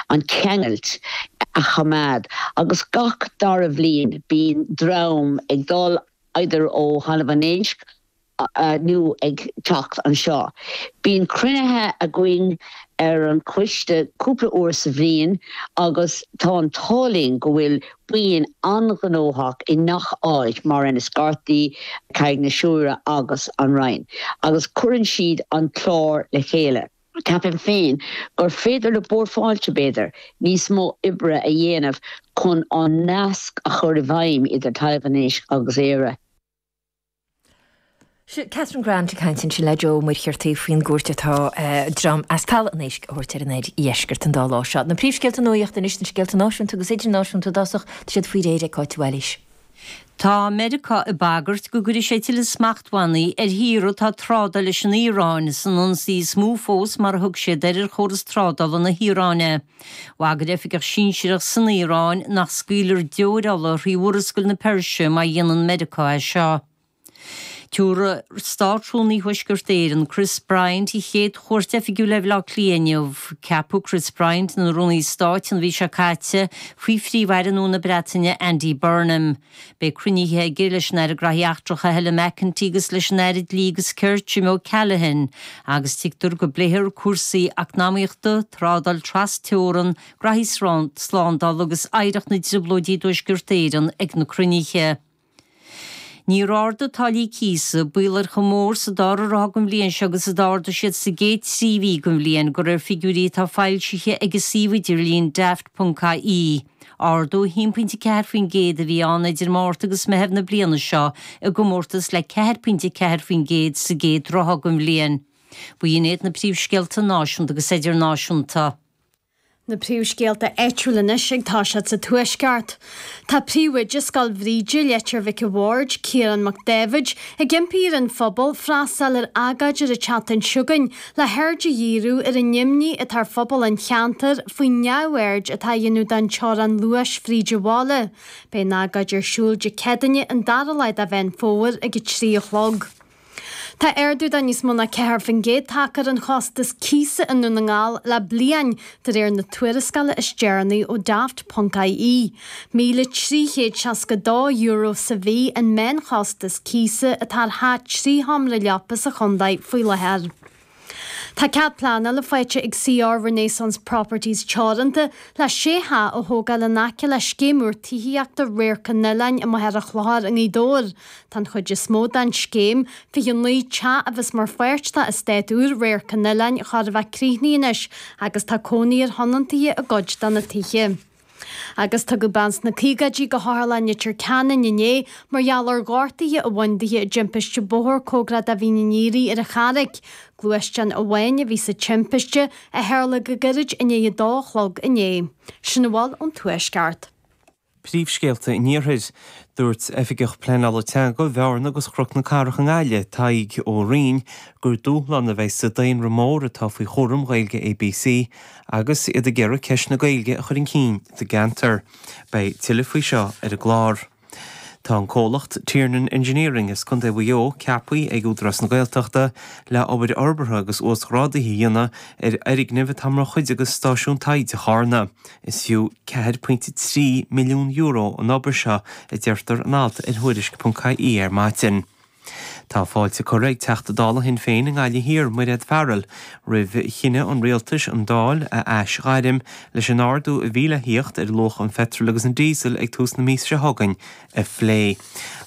an ceangailt a choimeád agus gach dara bhliain bíonn dream ag dul eidir ó Thalamh an Éisc nó ag teacht anseo. Bíonn cruinnithe againn ar an choiste cúpla uair sa bhliain agus tá an t-ádh linn go bhfuil buíon an-ghnóthach i ngach áit mar Inis Córthaidh, Carraig na Siúire agus An Rinn agus cuireann siad an clár le chéile. Ceapaim féin gur féidir le Bord Fáilte, b'fhéidir, níos mó oibre a dhéanamh chun an nasc a chur i bhfeidhm idir Talamh an Éisc agus Éire. Seo Catherine Grant ag caint ansin le Jeaic Ó Muircheartaigh faoin gcuairt atá dream as Talamh an Éisc a thabhairt ar an oirdheisceart an dá lá seo. Na príomhscéalta nuachta anois, na scéalta náisiúnta agus idirnáisiúnta, i dtosach, tá siad faoi réir ag Cáit Wallis. Tá Meiriceá ag bagairt go gcuirfidh sé tuilleadh smachtbhannaí ar thíortha atá ag trádáil leis an Iaráin san ionsaí is mó fós, mar a thug siad air, ar chóras trádála na hIaráine. Bhagair oifigeach sinsearach san Iaráin nach scaoilfear deoir ola thrí Mhurascaill na Peirse má dhéanann Meiriceá é seo. Tabharfaidh Státrúnaí Thuaisceart Éireann, Chris Bryant, a chéad chuairt oifigiúil ar Bhaile Átha Cliath inniu. Ceapadh Chris Bryant ina Rúnaí Stáit an mhí seo caite, faoi Phríomh-Aire nua na Breataine, Andy Burnham. Beidh cruinnithe aige leis an Aire Graithí Eachtracha, Helen McEntee agus leis an Aire Dlí agus Cirt, Jim O'Callaghan, agus tuigtear go bpléifear cúrsaí eacnamaíochta, trádáil tras-teorann, graithí slándála agus oidhreacht na dTrioblóidí i dTuaisceart Éireann ag na cruinnithe. Níor ardaigh táillí cíosa, baol ar chomh mór sa dara ráithe den bhliain seo agus a d'ardaigh siad sa gcéad trí mhí den bhliain, de réir figiúirí atá foilsithe ag an suíomh idirlín Daft.ie, ardú 1.4% a bhí ann idir Márta agus Meitheamh na bliana seo i gcomórtas le 4.4% sa gcéad ráithe den bhliain. B'in iad na príomhscéalta náisiúnta agus idirnáisiúnta. Na príomhscéalta áitiúil anois agus tá siad sa Tuaisceart. Tá príomhoide Scoil Bhríde, Leitir Mhic a' Bhaird, Ciarán Mac Daibhéid, ag impí ar an phobal freastáil ar agóid ar an tseachtain seo chugainn le haird a dhíriú ar an imní atá ar phobal an cheantair faoin neamhaird atá a dhéanamh don teorainn luais fríd an bhaile. Beidh an agóid ar siúl Dé Céadaine an dara lá de Mheán Fómhair ag a trí a chlog. Tá ardú de níos mó ná ceathair faoin gcéad tagtha ar an chostas cíosa i nDún na nGall le bliain, de réir na tuarascála is deireanaí ó Daft. ie. €1,362 sa mhí an meánchostas cíosa atá ar theach trí sheomra leapa sa chontae faoi láthair. Tá cead pleanála faighte ag CR Renaissance Properties Teoranta le sé theach a thógáil in aice le scéim úr tithíochta Radharc an Oileáin i Machaire Chlochair i nGaoth Dobhair. Tá an chuid is mó den scéim, 29 teach a bheas mar pháirt d'eastát úr Radharc an Oileáin, chóir a bheith críochnaithe anois agus tá cónaí ar thionontaithe i gcuid de na tithe. Agus tugadh bean sna caogaidí go hOtharlann Leitir Ceanainn inné mar gheall ar ghortaithe a bhain di i dtimpiste bóthair cóngarach do Mhín an Aoire ar an Charraig. Gluaisteán amháin a bhí sa timpiste, a tharla go gairid i ndiaidh a dó a chlog inné. Sin a bhfuil ón Tuaisceart. Príomhscéalta an Iarthair. Dúirt Oifigeach Pleanála Teanga Bhearna agus Chnoc na Cathrach i nGaillimh, Tadhg Ó Riain, gur dúshlán a bheidh sa daonra mór atá faoi chúram Ghaeilge ABC Agus iad ag iarraidh ceist na Gaeilge a chur chun cinn sa gceantar. Beidh tuilleadh faoi seo ar an gclár. Tá an comhlacht Tiernan Engineering as Contae Mhaigh Eo ceaptha ag Údarás na Gaeltachta le obair fhorbartha agus uasghrádaithe a dhéanamh ar fhoirgnimh atá mar chuid de Stáisiún Taighde Charna. Is fiú €4.3 milliún an obair seo a deirtear in alt ar Thuairisc.ie ar maidin. Tá fáilte curtha ag Teachta Dála Shinn Féin i nGaillimh Thiar, Mairéad Farrell, roimh chinneadh an Rialtais an Dáil a aisghairm leis an ardú a bhí le theacht ar luach an pheitril agus an díosail ag tús na míosa seo chugainn a phlé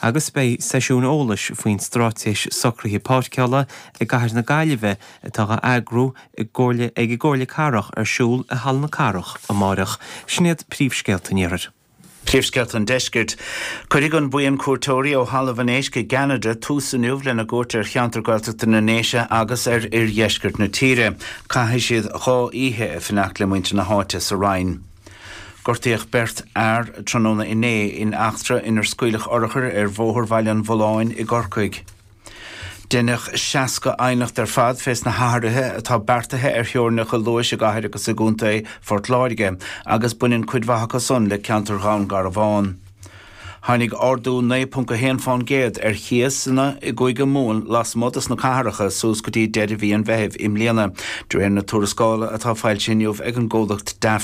agus beidh seisiún eolais faoin Straitéis Socruithe Páirceála i gCathair na Gaillimhe atá á eagrú ag an gComhairle Cathrach ar siúl i Halla na Cathrach amárach. Sin iad príomhscéalta an iarthair. Príomhscéalta an Deiscirt. Cuirfidh an bhuíon cuairteoirí ó Thalamh an Éisc i gCeanada tús inniu lena gcuairt ar cheantar Gaeltachta na nDéise agus ar oir-dheisceart na tíre. Caithfidh siad dhá oíche ag fanacht le muintir na háite sa Rinn. Gortaíodh beirt fhear tráthnóna inné in eachtra inar scaoileadh urchair ar Bhóthar Bhaile an Bhulláin i gCorcaigh. Deineadh 60 aighneacht ar fad fés na hathruithe atá beartaithe ar theorainneacha luais i gCathair agus i gContae Phort Láirge agus baineann cuid mhaith acu san le ceantar Dhún Garbhán. Tháinig ardú 9.1 fán gcéad ar chíosanna i gCúige Mumhan lasmuigh dos na cathracha suas go dtí deireadh mhí an Mheithimh i mbliana, de réir na tuarascála atá foilsithe inniu ag an gcomhlacht Daft.